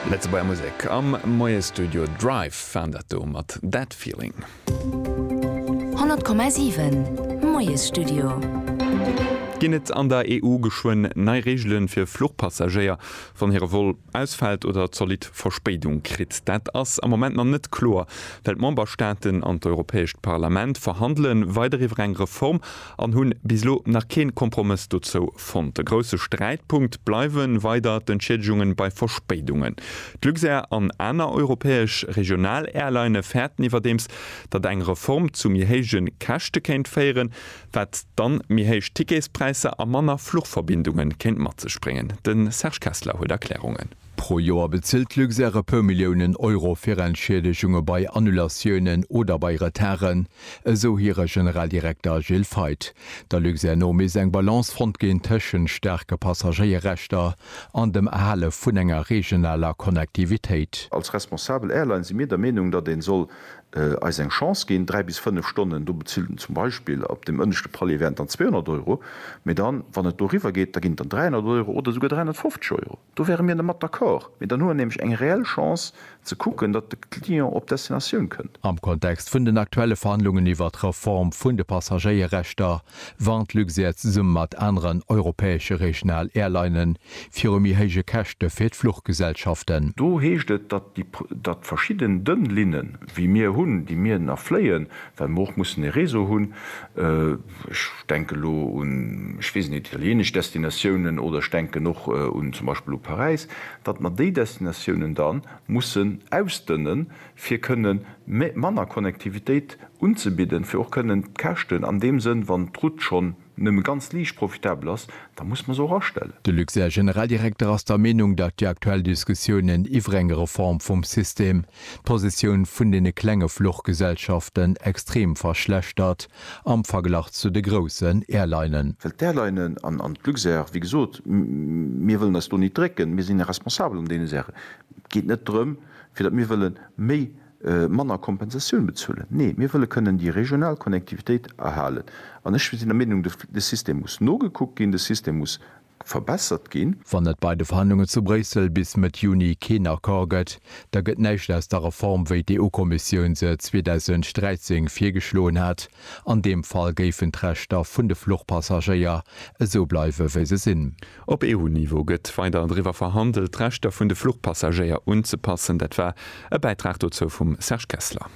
Lëtzebuerger Musek am Moiestudio Drive waren dat do mat That Feeling. 100,7 Moiesstudio. Ginn et an der EU geschwënn nei Reegele fir Fluchpassagéier, wann hire Vol ausfält oder zolidd Verspéidung kritt? Dat ass am Moment nach net kloer, well d'Memberstaaten an d'Europäescht Parlament verhandele weider iwwer eng Reform an hunn bis elo nach keen Kompromëss dozou fonnt. E grousse Sträitpunkt bleiwen weider d'Entschieddegungen bei Verspéidungen. D'Luxair an aner europäesch Regional-Airline fäerten iwwerdeems, datt eng Reform zu méi héijen Käschte kéint féieren, wat dann méi héich Ticketspräisser a manner Fluchverbindungen kéint mat sech bréngen. Den Serge Kessler huet Erklärungen. Pro Joer bezilt d'Luxair e puer Milliounen Euro fir Entschiedegunge bei Annulatiounen oder bei Retarden, esou hire Generaldirekter Gilles Feith. Der Luxair no misst eng Balance fonnt ginn tëschent staarke Passagéierrechter an dem Erhale vun enger regionaler Connectivitéit. Als responsabel Airline si mir der Meenung, datt ee soll eis eng Chance ginn. Dräi bis fënnef Stonnen, do bezilt en zum Beispill op deem ënneschte Palier wären et dann 200 Euro, mee dann, wann et doriwwer geet, da ginn et dann 300 Euro oder esouguer 350 Euro. Do wäre mir dermat d'accord, mee dann hu mer nämlech eng reell Chance ze kucken, datt de Client op d'Destinatioun kënnt. Am Kontext vun den aktuelle Verhandlungen iwwert d'Reform vun de Passagéierrechter warnt Luxair zesumme mat aneren europäesche regional Airlinene viru méi héije Käschte fir d'Fluchgesellschaften. Do heescht et, datt verschidden dënn Linnen, wéi mir hunn, déi mir nach fléien, well mer och mussen e Réseau hunn, Ech denken elo un, ech weess net, italienesch Destinatiounen oder ech denken och un zum Beispill u Paräis, datt mer déi Destinatiounen da mussen ausdënnen, fir kënne manner Connectivitéit unzebidden, fir och kënnen d'Käschten an deem Sënn, wann d'Route schonn nëmme ganz liicht profitabel ass, da muss mer se och astellen. De Luxair Generaldirekter ass der Meenung, datt déi aktuell Diskussiounen iwwer eng Reform vum System d'Positioun vun deene klenge Fluchgesellschaften extrem verschlechtert. Am Verglach zu de groussen Airlinen. Well d'Airlinen an d'Luxair, wéi gesot, mir wëllen eis do nit drécken, mir sinn responsabel an deene Saachen. Et geet net drëm, fir datt mir wëlle méi, manner Kompensatioun bezuelen. Nee, mir wëlle kënnen déi regional Connectivitéit erhalen. An ech sinn der Meenung, de System muss nogekuckt ginn, de System muss. verbessert ginn. Wann et bei de Verhandlungen zu Bréissel bis Mëtt Juni keen Accord gëtt, da gëtt näischt aus der Reform, wéi d'EU-Kommissioun se 2013 virgeschloen hat. An deem Fall géifen d'Rechter vun de Fluchpassagéier esou bleiwe wéi se sinn. Op EU-Niveau gëtt weider driwwer verhandelt, d'Rechter vun de Fluchpassagéier unzepassen. Dat war e Bäitrag dozou vum Serge Kessler.